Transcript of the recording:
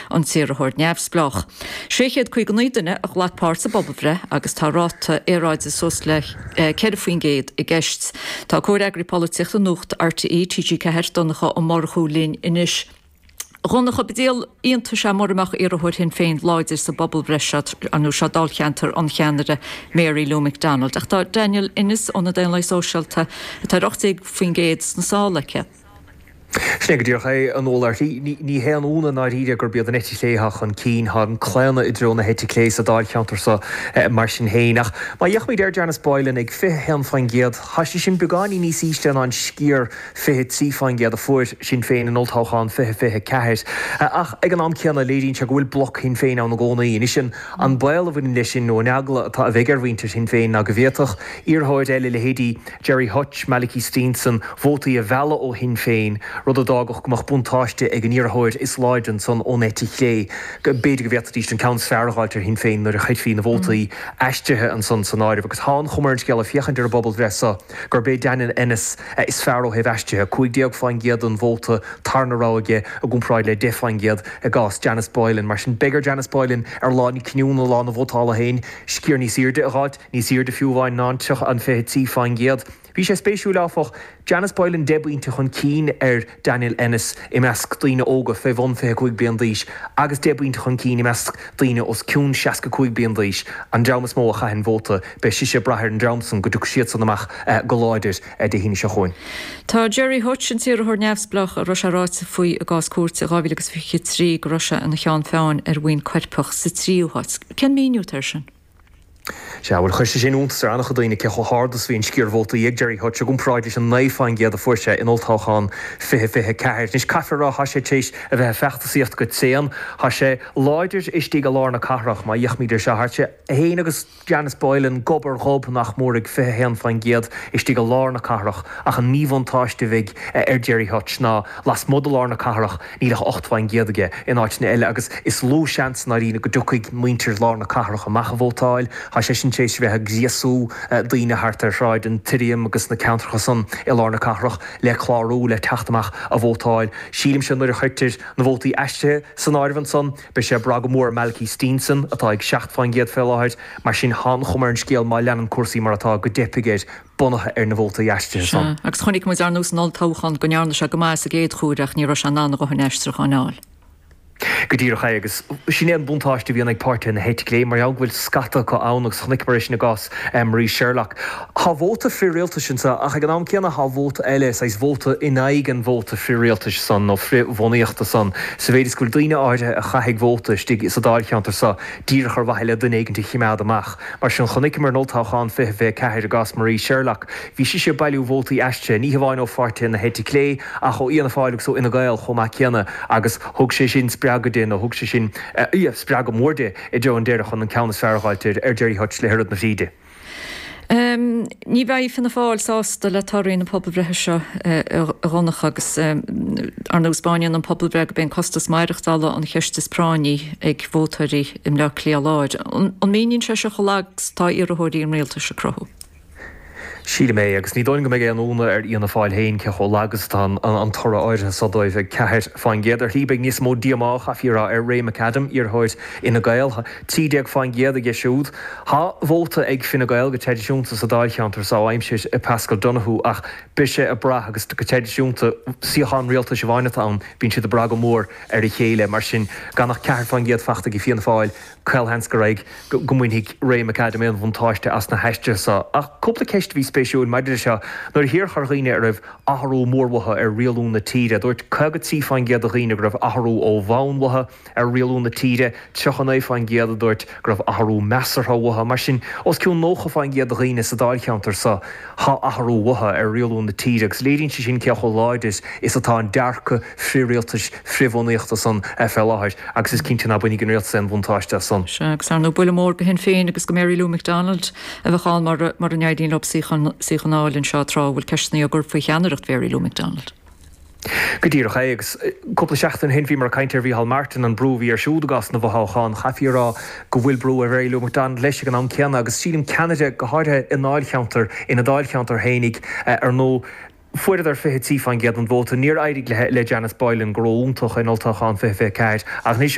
an t-iarrthóir neamhspleách. 659 duine a ghlac páirt sa bpobalbhreith agus tá ráta earráide suas le 4 faoin gcéad i gceist. Tá comhfhreagraí polaitíochta Nuacht RTÉ, TG4, Donncha Ó Murchú linn anois. Dhonncha, ba díol iontais é mura mbeadh iarrthóir Shinn Féin láidir sa bpobalbhreith seo, nó seo dáilcheantar an cheannaire Mary Lou McDonald. Ach tá Daniel Ennis ó na Daonlathaigh Sóisialta, atá ar 18 faoin gcéad, sna sála aige. Sin é go díreach é, a Mháire. Ní haon ionadh i ndáiríre gurb iad an eite chlé atá chun cinn. Tá an claonadh i dtreo na heite clé sa dáilcheantar seo mar sin féin. Ach má fhéachaimid ar Janice Boylan, ag 21%, tá sé sin beagáinín níos ísle ná an sciar 23% a fuair Sinn Féin in Olltoghchán 2024. Ach ag an am céanna, léiríonn sé go bhfuil bloc Shinn Féin ann i gcónaí. Anois, an baol a bhaineann leis sin, nó an eagla atá a bheidh ar mhuintir Shinn Féin, ná go bhféadfadh iarrthóir eile, leithéidí, Gerry Hutch, Malachy Steenson, vótaí a mhealladh ó Shinn Féin, rud a d'fhágfadh go mbeadh buntáiste ag an iarrthóir is láidre ansan ón eite chlé. B'fhéidir go bhféadfaidíst an ceann is fearr a dh'fháilt ar Shinn Féin nuair a chuirfí na vótaí aistrithe ansan san áireamh. Agus tá an chuma ar an scéal ag féachaint ar an bpobalbhreith so gurb é Daniel Ennis is fearr ó thaobh aistrithe, 15% den vóta tarna rogha aige i gcomparáid le 10% i gcás Janice Boylan. Mar sin, beidh ar Janice Boylan ar lá na cinniúna, lá na vótála féin, sciar níos airde a dh'fháilt. Níos airde fiú amháin ná an t-, an 23% Bhí sé spéisiúil, áfach, Janice Boylan 10 bpointe chun cinn ar Daniel Ennis i measc daoine óga fé bhun 25 bliain d'aois agus 10 bpointe chun cinn i measc daoine os cionn 65 bliain d'aois, an dream is mó a chaitheann vóta. Beidh sise ag brath ar an dream san go dtiocfaidh siadsan amach go láidir Dé hAoine seo chugainn. Tá Gerry Hutch, an t-iarrthóir neamhspleách a raibh sé ráite faoi i gcás cúirte i 2023 go raibh sé ina cheann feadhna ar bhuíon coirpeach, sa tríú háit. Cén míniú atá air sin? Sea, bhuel, chuir sé sin iontas ar an-chuid daoine, cé chomh hard is a bhí an sciar vótaí ag Gerry Hutch i gcomparáid leis an 9 fán gcéad a fuair sé in olltoghchán 2024. Anois, caithfear a rá, tá sé tar éis a bheith ag feachtasaíocht go tréan. Tá sé láidir istigh i lár na cathrach, má fhéachaimid ar seo, tá sé féin agus Janice Boylan gob ar ghob, nach mór, ag 21 fán gcéad istigh i lár na cathrach, ach an míbhuntáiste a bheidh ar Gerry Hutch ná, lasmuigh de lár na cathrach, Níl ach ocht faoin gcéad aige in áiteanna eile agus is lú seans ná riamh go dtiocfaidh muintir lár na cathrach amach a vótáil. Tá seisean tar éis a bheith ag gríosú daoine thart ar Shráid an tSirriaim agus na ceantracha san i lár na cathrach le clárú le teacht amach a vótáil. Sílimse nuair a chuirtear na vótaí aistrithe san áireamh ansan, beidh sé ag brath go mór ar Malachy Steenson, atá ag seacht faoin gcéad fé láthair, mar sin tá an chuma ar an scéal má leanann cúrsaí mar atá go dteipfidh air. bunaithe ar na vótaí aistrithe san agus chonaic muid ar ndóigh san olltoghchán go ndearna sé go maith sa gcéad chomhaireamh ach ní raibh sé in ann a dhothain aistriúchán a fháil. Go díreach é, agus sin é an buntáiste a bhíonn ag páirtithe na heite clé mar gheall go bhfuil scata acu ann, agus chonaiceamar é sin i gcás Marie Sherlock. Tá vóta frith-rialtais anseo ach ag an am céanna tá vóta eile, saghas vóta in aghaidh an vóta frith-rialtais san nó frith-bhunaíochta san, sa mhéid is go bhfuil daoine áirithe a chaithfidh vóta istigh sa dáilcheantar seo díreach ar mhaithe le duine éigin a chimeád amach. Mar sin, chonaiceamar in Olltoghchán 2024 i gcás Marie Sherlock, bhí sise ag bailiú vótaí aistrithe, ní hamháin ó pháirtithe na heite clé, ach ó Fhianna Fáil agus ó Fhine Gael chomh maith céanna, agus thug sé sin spreagadh di, nó thug sé sin spreagadh mór di, i dtreo an deiridh, chun an ceann is fearr a dh'fháil ar Gerry Hutch le hoiread na fríde. Ní bheidh Fianna Fáil sásta le torthaí na pobalbhreithe seo, a Dhonncha, agus, ar ndóigh, taispeáineann an phobalbhreith gurb é an costas maireachtála, an cheist is práinní ag vótóirí, i mBleá Cliath Láir. An míníonn sé seo chomh lag 's atá iarrthóirí an rialtais ag cruthú? Sílim é, agus ní dóigh liom go mbeidh aon ionadh ar Fhianna Fáil féin cé chomh lag 's atá an toradh áirithe so dóibh, 4%. Ar shlí beidh níos mó díomá, chaithfí a rá, ar Ray McAdam, iarrthóir Fhine Gael. Tá 13% aige siúd. Tá vóta ag Fine Gael go traidisiúnta sa dáilcheantar so ó aimsir Paschal Donohoe ach beidh sé ag brath, agus go traidisiúnta suíochán rialtais amháin atá ann, bíonn siad ag brath go mór ar a chéile. Mar sin, gan ach ceathair fán gcéad faighte ag Fianna Fáil, caolsheans go raibh go mbainfidh Ray McAdam aon bhuntáiste as na haistrithe seo. Ach cúpla ceist a bhí spéisiúil maidir leis seo, nuair a fiafraíodh de dhaoine a raibh athrú mór uathu ar rialú na tíre, dúirt 53 fán gcéad de dhaoine go raibh athrú ó bhonn uathu ar rialú na tíre, 39 fán gcéad a dúirt go raibh athrú measartha uathu. Mar sin, os cionn 90 fán gcéad de dhaoine sa dáilcheantar seo, tá athrú uathu ar rialú na tíre agus léiríonn sé sin cé chomh láidir is atá an dearcadh frithrialtais frithbhunaíochta san fé láthair agus is cinnte ná bainfidh an rialtas aon bhuntáiste as san. Sea, agus ar ndú buille mór go Shinn Féin agus go Mary Lou McDonald a bheadh ann mura n-éiríonn leo suíochán a fháil anseo tráth a bhfuil ceisteanna á gcur faoi cheannaireacht Mhary Lou McDonald. Go díreach é, agus cúpla seachtain ó shin bhíomar ag caint ar Mhicheál Martin, an brú a bhí air siúd i gcás na bhfothoghchán. Chaithfí a rá go bhfuil brú ar Mhary Lou McDonald leis ag an am céanna, agus sílim ceannaire, go háirithe i ndáilcheantar, ina dáilcheantar fhéinig, ar ndú, Fuaireadar 23 fán gcéad den vóta. Níor éirigh le Janice Boylan, go ró-iontach in Olltoghchán 2024, ach anois,